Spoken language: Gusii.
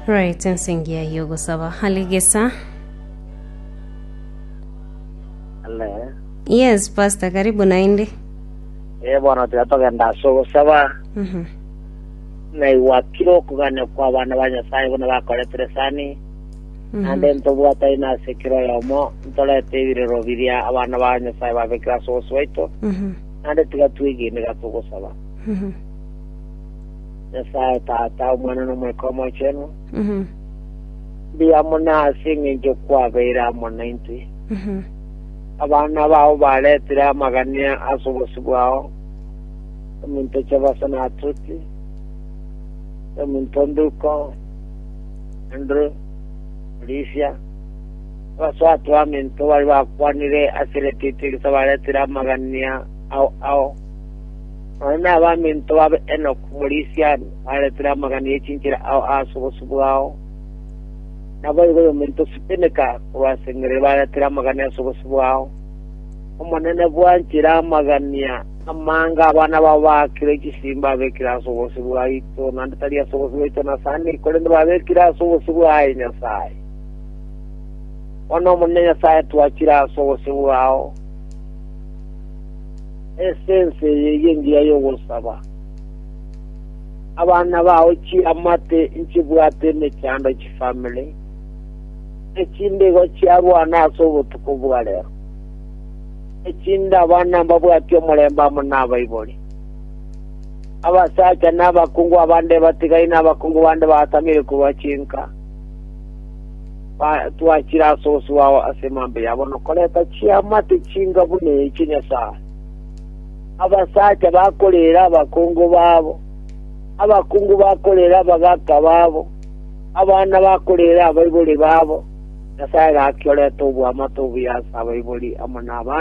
Right, ensingia y'ogosaba aligesa. Hello. Yes, Pastor, karibu naende. Eh, bono tiga togenda ase ogosaba Mhm. naigwa kiro okogania kwa abana ba nyasaye buna bakoretire sani Mhm. ande ntobwatari nase kiro oyomo ntorete ebirero biria abana ba nyasaye babekire ase ogosi baito Mhm. ande tiga twegene iga togosaba Mhm. Nyasae Tata, Omwana, na Omoika Omochenu, mbuya mono ase engencho kwabeire amo naintwe. Abana bao baretire amagani ase obosio bwao, ominto Chebasa na Atuti, na ominto Nduko, Andrew, Olivia, abaswatu baminto baria bakwanire ase eretiti erisa baretire amagania ao ao. Nonye nabaminto babe Enok omorisia are, baretire amagani e chinchera ao aase obosio bwao. Naboigo oyominto Sipeneka korwa ase Engiriri baretire amagani ase obosio bwao. Omonene bwanchire amagani aa amange abana bao baakire chisiimi babekire ase obosio bwaito, naende tari ase obosio bwaito Nasani, korende babekire ase obosio bwaye Nyasae. Bono Omonene Nyasae twachire ase obosio bwao. Esense eye eyio engiya y'ogosaba. Abana bao chiamate nchibwate emechando chifamiri, echinde igo chiarwana ase obotuko bwa rero. Echinde abana mbabwati omorembe amo nabaibori. Abasacha na abakungu abande ebatigaine abakungu bande baatamire korwa chinka. Ba- twachire ase ose wao ase emambe yabo nokoreta chiamate chinga buna eche Nyasae. Abasacha bakorera abakungu babo, abakungu bakorera abagaka babo, abana bakorera abaibori babo, Nyasae gaki orete oboamate obuya ase abaibori amo nabande.